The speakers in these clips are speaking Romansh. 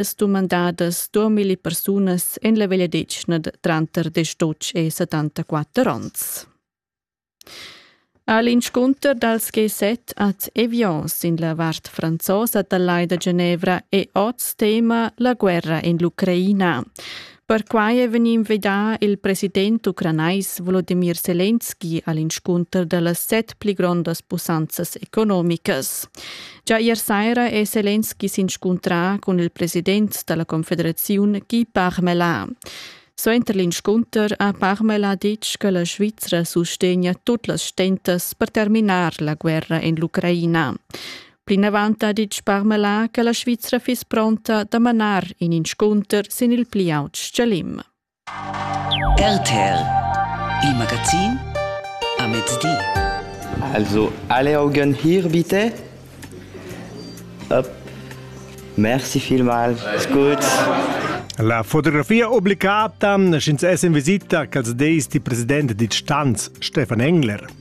es dumandadas 2000 persunas in la vegliadetgna tranter 18 e 74 ons. All'inscunter dals G7 ad Evians in la vart franzosa da Lai da Genevra è oz tema la guerra in l'Ucraina. Perquai è vegnì invidà il president ucranais Volodimir Selenski a l'inscunter da las set pli grondas pussanzas economicas. Già ier saira è Selenski s'inscuntrà cun il president da la Confederaziun Guy Parmelin. Suenter l'inscunter ha Parmelin ditg che la Svizra sustegna tut las stentas per terminar la guerra en l'Ucraina. Plinavant ha ditg Parmelin che la Svizra fiss pronta da manar in inscunter sin il pli aut stgalim. RTL, il magazin a mezdi. Also alle Augen hier bitte. Up. Merci vielmals. Gut. La fotografia obbligata sch'ins es in visita quels deis di president di Stanz Stefan Engler.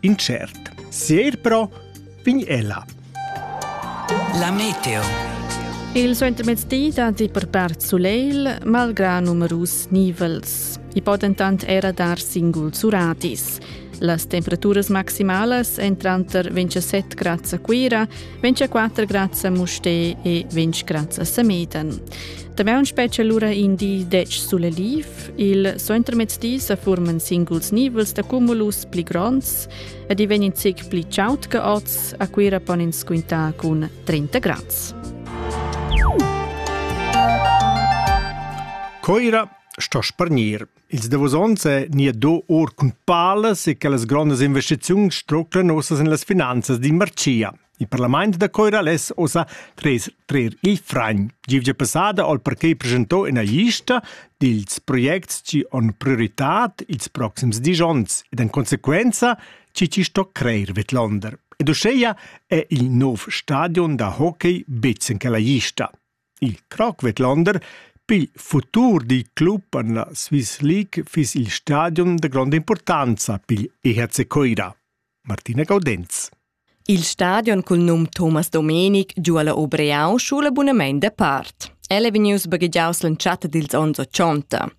Incert. Sier però vegn ella. La meteo. Il suentermezdi datti per part sulegl, malgrà numerus nivels. I po dentant era dar singuls uratis. Las temperaturas maximalas èn tranter 27 grads a Cuira 24 grazie a Musté e 20 grazie a Sameten. Damaun spetga lura in di dec sulle liv. Il suentermezzdi sa forman singuls nivels da cumulus pli gronds ed i vegn in zic pli chaut che oz. A Cuira pon ins quintar cun 30 grads. Coira sto spargnir Ils davos onns è nia do or cun palas e che las grondas investiziuns struclan nossas en las finanzas d'in marcia. Il parlament da Coira less ossa trer, trer il fragn. Givgia passada al parquet presentò ina lista dils projects chi on prioritad ils proxims dis onns ed en consequenza chi ci sto creir Vetlonder. Ed uscheia è il nov stadion da hockey bitzen che la lista. Il Cracvetlander pil futur dil club en la Swiss League fiss il stadion da gronda impurtanza pigl EHC Coira. Martina Gaudenz. Il stadion cul num Thomas Domenic giu alla Obreau schula bunamein de part. El è vegnius baghegiaus l'entschatta dils onns 80.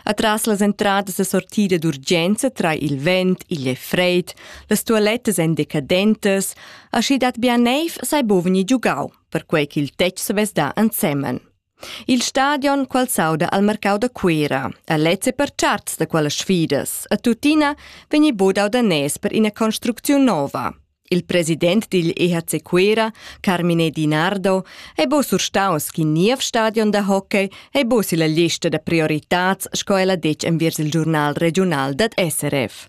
Atras las entradas da sortida d'urgenza tra il vent, igl e freid, las tualettas èn decadentas, aschi dat bia neiv sai bo vegnir giugau. perquei ch'il tetg savess dar ensemen. Il stadion qual s'auda al mercau da Cuera ha lezze per charts da quellas sfidas e tuttina vegni bodau da nes per ina construcziun nova. Il president digl EHC Cuera, Carmine Dinardo, ei bo surstaus ch'in niev stadion da hockey ei bo silla lista da prioritads sco el ha detg enviers il giurnal regiunal dad SRF.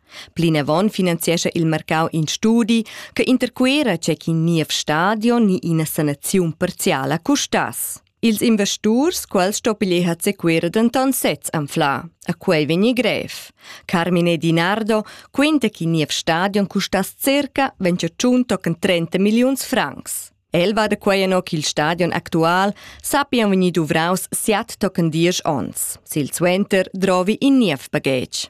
Plinavon finanziescha il marcau in studi che intercuera tgei ch'in niev stadion ni ina sanaziun parziala custass. Ils investurs, quels stoppiglier hat sequira denton sez anfla. A quei vegni grev. Carmine Di Nardo quenta che niev stadion custass circa 28 tochen 30 milliuns francs. El va da quei ennå ch'il stadion actual sappian vegnir duvraus siat tochen diesch onns. Silsuenter drovi in niev baghetg.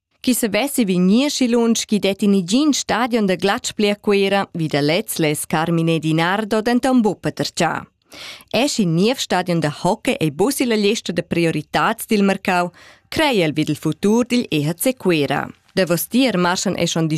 Chi savessi vegnir schi lunsch chi det in igin stadion da glatsch bler Cuera vi da lez les Carmine Di Nardo denton buca tercià. Es in niev stadion da hockey ei busi la lista da prioritats dil mercau, crei el vid il futur digl EHC Cuera. Davostier marschan e schon